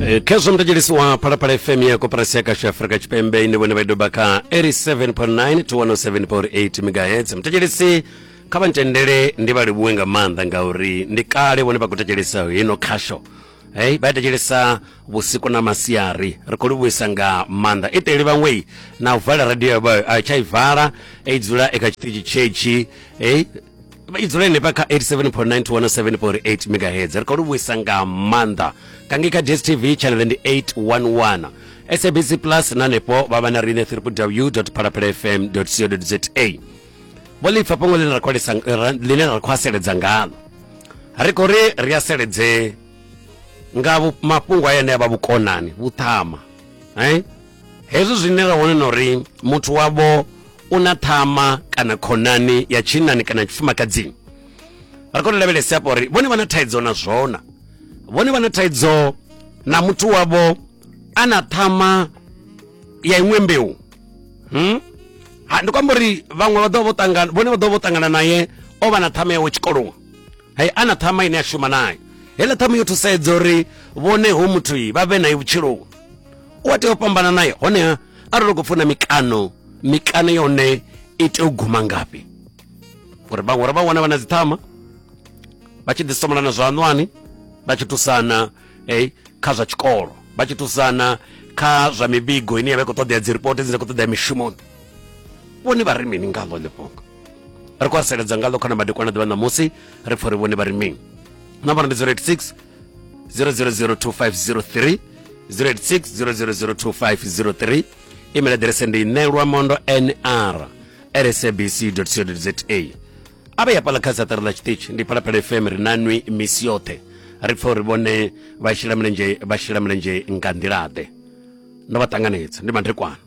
Eh, khezwo mutedzhelisi wa phalaphala fm ya koporasi ya kasha afrika tshipembe ine vhone vha doba kha 87.9 to 107.8 megahertz mutedzhelisi kha vha ntendele ndi vha livhuwe nga maanḓa ngauri ndi kale vhone vha khou tetshelesa hino khasho hey vha tetshelesa vhusiku na masiari ri khou livhuisa nga maanḓa i teli vhaṅwei na u vala radio yavho a tsha i vala i dzula i kha tshiṱitshi tshetschi hey i dzula henefha kha 87.9 to 107.8 megahertz ri khou lu vhuisa nga maanḓa kange kha dstv channel ndi 811 sabc plus na hanefho vha vha na riṋe www phalaphala fm co za vho lipfa fhungo ḽine ra khou lisa- ra- ḽine ra khou aseledza ngalo ri khou ri ri aseledze nga vhu- mafhungo a yane a vha vhukonani vhuṱhama eh? hezwo zwine ra wana na uri muthu wavho u na ṱhama kana khonani ya tshinnani kana ya tshifumakadzini ri kone lavhelese afho uri vhone vha na thaidzo na zwona vhone vha na thaidzo na muthu wavho a na ṱhama ya iṅwe mbeu hmm? ndi kwamba uri vhaṅwe vha ḓo vho ṱangana vhone vha ḓo vho ṱangana naye o vha na ṱhama yawe tshikoloni hai ana ṱhama ine a shuma nayo heiḽa ṱhama yo thusedza uri vhone ho muthu vha vhe naye vhutshiloni u a tea u fhambana naye honeha arali u khou funa mikano mikano yone i tea u guma ngafhi uri vhaṅwe uri vha wana vha na dziṱhama vha tshi ḓisomelana zwa anwani vha tshi thusana hey, kha zwa tshikolo vha tshi thusana kha zwa mivhigo ine ya vha i khou ṱoḓea dzi ripoti dzine khou ṱoḓea mishumoni vhone vha ri mini nga ḽo ḽifhungo ri khou haseledza ngaḽo khana madekwana ḓuvha ṋamusi ri pfha uri vhone vha ri mini nambara ndi 086 0002503 086 0002503 email aḓirese ndi nelwa mondo nr rsabc co za a vhe ya pala kha saṱari ḽa tshiṱitshi ndi phalaphala fm ri na nwi misi yoṱhe ri pfha uri vhone vha shela mulenzhe vha shela mulenzhe nga nḓilaḓe ndo vha ṱanganedza ndi mandekwana